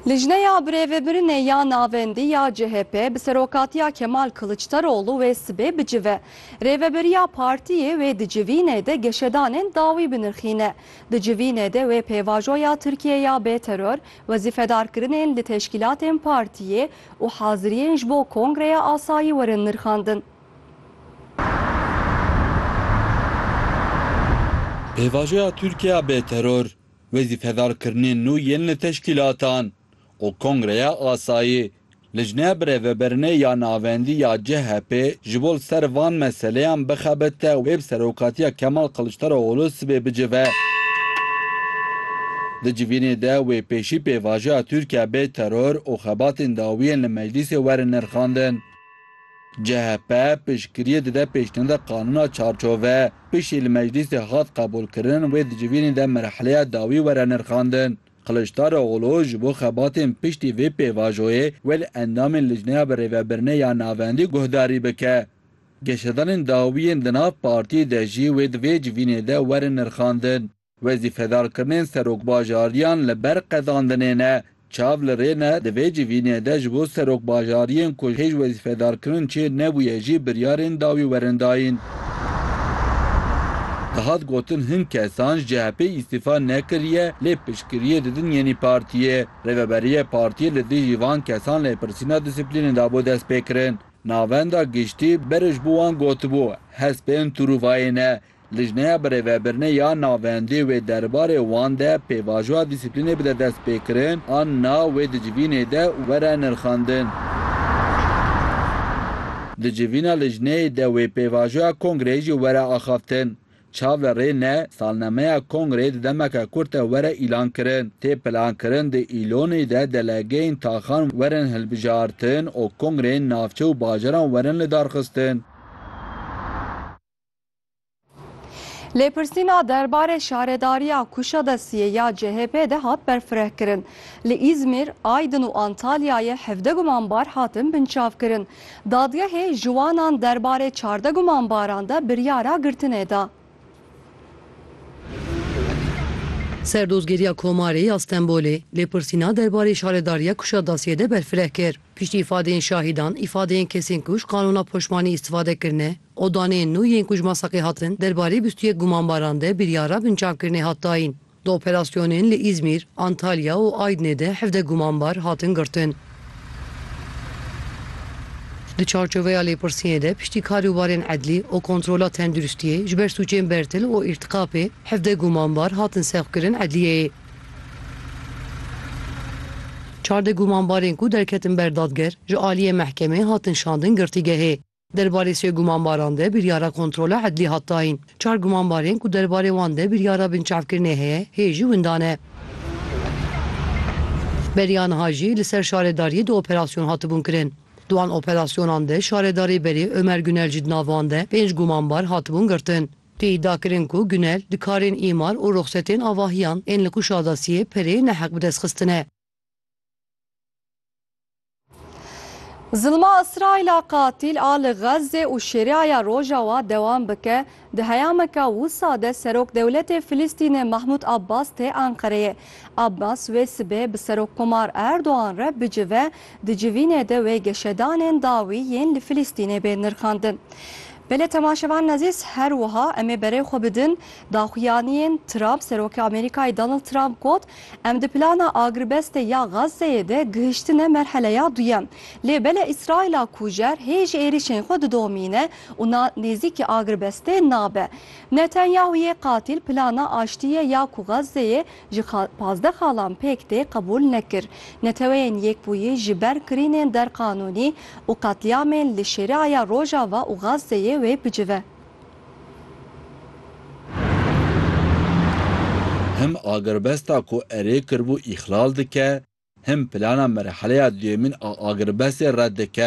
Lijneya Birêvebirinê ya Navendî ya CHP bi serokatiya Kemal Kiliçdaroglu wê sibê bicive. Rêveberiya partiyê wê di civînê de geşedanên dawî binirxîne. Di civînê de wê pêvajoya Tirkiyê ya bêteror, wezîfedarkirinên li teşkîlatên partiyê û haziriyên ji bo kongreya asayî werin nirxandin. Pêvajoya Tirkiye ya bêteror. Wezîfedarkirinên nû yên li teşkîlatan û Kongreya Asayî, Lijneya Birêveberinê ya Navendî ya CHP'ê ji bo li ser van meseleyan bixebite û wê bi serokatiya Kemal Kiliçdaroglû sibê bicive. Di civînê de wê pêşî pêvajoya Tirkiye bê teror û xebatên dawiyên li meclîsê werin nirxandin. CHP piştgiriyê dide pêşniyada qanûna çarçove, piştî li meclîsê hat qebûlkirin wê di civînê de merheleya dawî were nirxandin. Kiliçdaroglû ji bo xebatên piştî vê pêvajoyê wê li endamên lijneya birêvebirinê ya navendî guhdarî bike. Geşedanên dawiyên di nav partiyê de jî wê di vê civînê de werin nirxandin. Wezîfedarkirinên serokbajariyan li ber qezandinê ne. Çav li rê ne, di vê civînê de ji bo serokbajariyên ku hêj wezîfedarkirin çêr nebûye jî biryarên dawî werin dayîn. Dihat gotin hin kesan ji CHP'ê îstîfa nekiriye lê piştgiriyê didin yenî partiyê. Rêveberiya partiyê li dijî van kesan lêpirsîna dîsiplînê dabû destpêkirin. Navenda giştî berê ji bo wan gotibû, hespên tûrûvayê ne, Lijneya Birêvebirine ya Navendê wê derbarê wan de pêvajoya dîsîplînê bide destpêkirin an na wê di civînê de were nirxandin. Di civîna lijneyê de wê pêvajoya kongreyê jî were axaftin. Çav li rê ne, salnemeya kongreyê di demeke kurt de were îlan kirin. Tê plankirin di Îlonê de delegeyên taxan werin hilbijartin û kongreyên navçe û bajaran werin lidarxistin. Lêpirsîna derbarê şaredariya Kuşadesiyê ya CHP'ê de hat berfirehkirin. Li Îzmîr, Aydin û Antalyayê hevdeh gumanbar hatin binçavkirin. Dadgehê ji wanan derbarê çardeh gumanbaran de biryara girtinê da. Serdozgeriya Komarê ya Stenbolê lêpirsîna derbarê şaredariya Kuşadasiyê de berfireh kir. Piştî îfadeyên şahîdan, îfadeyên kesên ku ji qanûna poşmanî îstîfade kirine, Odanên nû yên ku ji Masaqê hatin, derbarê bîst û yek gumanbaran de biryara binçavkirinê hat dayîn. Di operasyonên li Îzmîr, Antalya û Aydnê de hevdeh gumanbar hatin girtin. Di çarçoveya lêpirsînê de piştî karûbarên edlî û kontrola tenduristiyê ji ber sûcên bertil û îrtîkapê hevdeh gumanbar hatin sevkirin edliyeyê. Çardeh gumanbarên ku derketin ber dadger, ji aliyê mehkemê hatin şandin girtîgehê. Derbarê sê gumanbaran de biryara kontrola edlî hat dayîn. Çar gumanbarên ku derbarê wan de biryara binçavkirinê heye hê jî windan e. Beriya niha jî li ser şaredariyê du operasyon hatibûn kirin. Di wan operasyonan de şaredarê berê Ömer Gunel jî di nav wan de pênc gumanbar hatibûn girtin. Tê îdia kirin ku Gunel di karên îmar û ruxsetên avahiyan ên li Kuşadasiyê pereyê neheq bi dest xistine. Zilma Îsraîla qatîl a li Xezzê û Şêriaya Rojawa dewam bike, di heyameke wisa de Serok Dewletê Filistînê Mahmûd Abbas tê Enqereyê. Abbas wê sibê bi Serokkomar Erdogan re bicive, di civînê de wê geşedanên dawî yên li Filistînê bên nirxandin. Belê temaşevanên ezîz, her wiha em ê berê xwe bidin daxuyaniyên Trump, Serokê Amerîkayê Donald Trump got, Em di plana agrbestê ya Gazzeyê de gihiştine merheleya duyem. Lê bele Îsraîla kujer hêj êrîşên xwe didomîne û na nêzîkî agrbestê nabe. Netanyahu yê qatîl plana aştiyê ya ku Gazzeyê ji pazdeh xalan pêk tê qebûl nekir. Neteweyên Yekbûyî ji ber kirînên derqanûnî û qetlîamên li Şêriaya Rojava û Gazzeyê wê bicive. Him agirbesta ku erê kiribû îxlal dike, him plana merheleya duyemîn a agirbestê red dike.